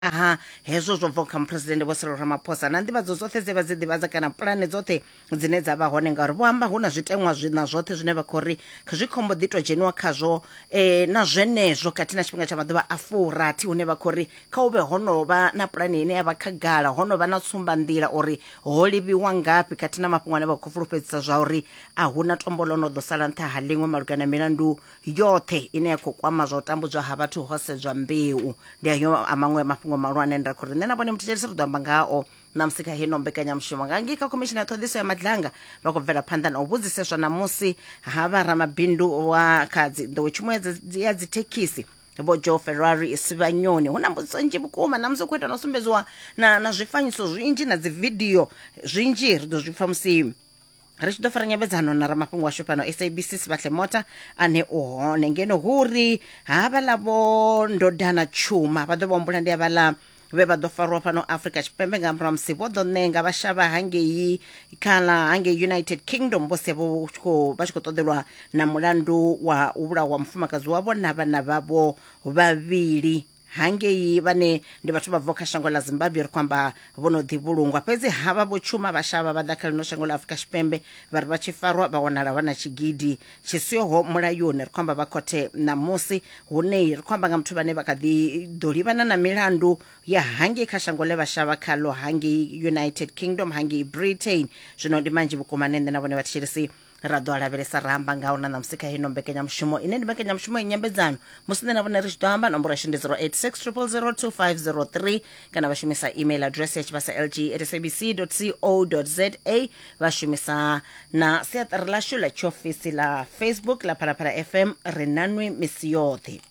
ha hezwo zwo bvaho kha muphuresidennde vho sirilo ramaphosa na nḓivhadzo dzoṱhe dze vha dzi ḓivhadza kana pulane dzoṱhe dzine dza vha hone ngauri vho amba hu na zwiteṅwa na zwoṱhe zwine vha khou ri zwi khombo ḓi tou dzheniwa khazwo um na zwenezwo khathihi na tshifhinga tsha maḓuvha a furathi hune vha khou ri kha u vhe ho no vha na pulane ine ya vha khagala ho no vha na tsumbanḓila uri ho livhiwa ngafhi khathihi na mafhungo ane vha khou fulufhedzisa zwa uri a hu na tombo ḽo no ḓo sala nṱha ha ḽiṅwe malugana na milandu yoṱhe ine ya khou kwama zwa u tambudzwa ha vhathu ho sedzwa mbeu ndi ayo a maṅwe mafhungo mahulwane ane ra khou ri nṋe na vhone muthetshelisi ri ḓo amba ngao ṋamusi kha heno mbekanyamushumo nga ngei kha khomishini ya ṱhoḓiso ya madlanga vha khou bvela phanḓa na u vhudziseswa ṋamusi ha vha ramabindu wa kha dzi- nḓowetshumo ya dzi- ya dzithekhisi vho joe ferrari sivhanyoni hu na mbudziso nzhi vhukuma ṋamusi u khou ita na u sumbedziwa na na zwifanyiso zwinzhi na dzividio zwinzhi ri ḓo zwi pfha musi ri tshi ḓo fara nyambedzano na ramafhungo washu fhano sabc sivhahle mota ane u hone ngeno hu uri havhaḽa vho ndodana tshuma vha ḓo vha humbula ndi havhaḽa vhe vha ḓo farwa fhano afrika tshipembe nga murahu ha musi vho ḓo ṋenga vha shavha hangei kana hangei united kingdom vho sia vho tshi khou- vha tshi khou ṱoḓelwa na mulandu wa u vhulawa mufumakadzi wavho na vhana vhavho vhavhili hangei vhane ndi vhathu vha bvaho kha shango ḽa zimbabwe ri kwamba vho no ḓi vhulungwa fhedzi havha vho tshuma vha shavha vha ḓa kha ḽino shango ḽa afurika tshipembe vha ri vha tshi farwa vha wanala vha na tshigidi tshi siho mulayoni ri kwamba vha khothe ṋamusi hunei ri kwamba nga muthu vhane vha kha ḓi ḓo livhana na milandu ya hangei kha shango ḽe vha shavha khaḽo hangei united kingdom hangei britain zwino ndi manzhi vhukuma ne nṋe na vhone vhathetshelesi ra ḓo a lavhelesa ra amba ngaho na ṋamusi kha hino mbekanyamushumo ine ndi mbekanyamushumo ya nyambedzano musi nṋe na vhone ri tshi ḓo amba nomboro yashu ndi 0860002503 kana vha shumisa email address ya tshivhasa lg at sabc co za vha shumisa na siaṱari lashu ḽa tshiofisi ḽa facebook ḽa phalaphala fm ri nanwi misi yoṱhe